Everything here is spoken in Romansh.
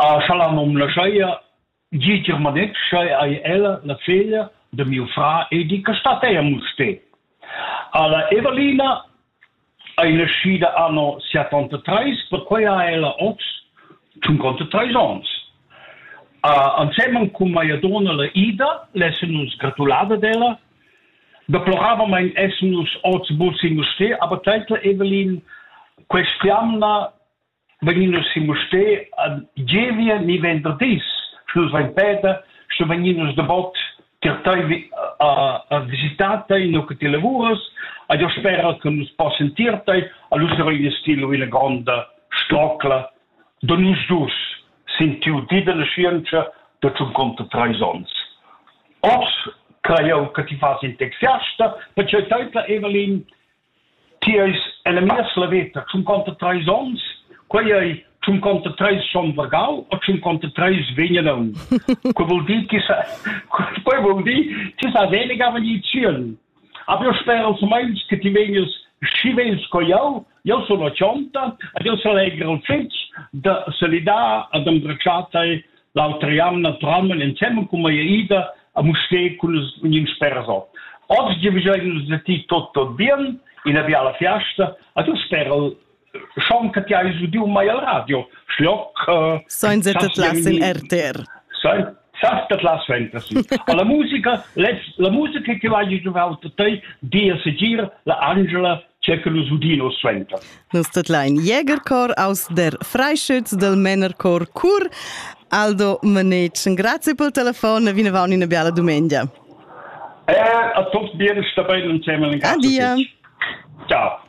Scha la nom laschaja gir ch'el manetsch, scha eir ella la figlia da miu frar e di che statai a Mustér. Alla Evelina ei naschida anno settantatrés, perquei ha ella oz tschuncontatrés onns. Ansemen cun mia donna la Ida l'essen nus gratulada d'ella. Deploravamein essan nus oz buc in Mustér, aber teitla Evelin, questa jamna vegnin nus sin Mustér ad Gievia ni venderdis, sche nus vein peda, sche vegnin nus dabot tier tei a, a visitar tei, nu che ti lavuras, a jo spera che nus possen tier tei, a lu sarein ins ti lu ina gronda strocla da nus dus sin tiu di della scienza da tschun conto treis ons. Os crai jau che ti fas in texiasta, perché teitla Evelyn Ti eis ella mia slavetta tschunconta treis onns, quei ei tschunconta treis schon vargau o tschunconta treis vegnan aunc. Quei vul dir che sa, quei vul dir ti sa weniger vegnir tschiel. Aber eu spero meins che ti vegnas schi vegn sco jau, eu sono cionta ed eu s'allegra fitg da salidar ed embracciar tai L'autra jamna tramel ensemen cum eia ida a Mustér cun ün sperso. Oggi giavigel nus da ti tot tot bien in avia la fiasta, a tu sperel schon che ti hai udiu mai al radio, schlock. Äh, Sainza tetlas in RTR. Sas tetlas fantasy. La musica, la musica che vai giovau te, dia segir la Angela tge che nus udin oz suenter. Nus tedlain Jägerchor aus der Freischütz del Männerchor Chur. Aldo Manetschen, grazie pel telefon e vinavant una bella dumengia. Eh, a tots bienes da bene insieme. Adia. Ciao.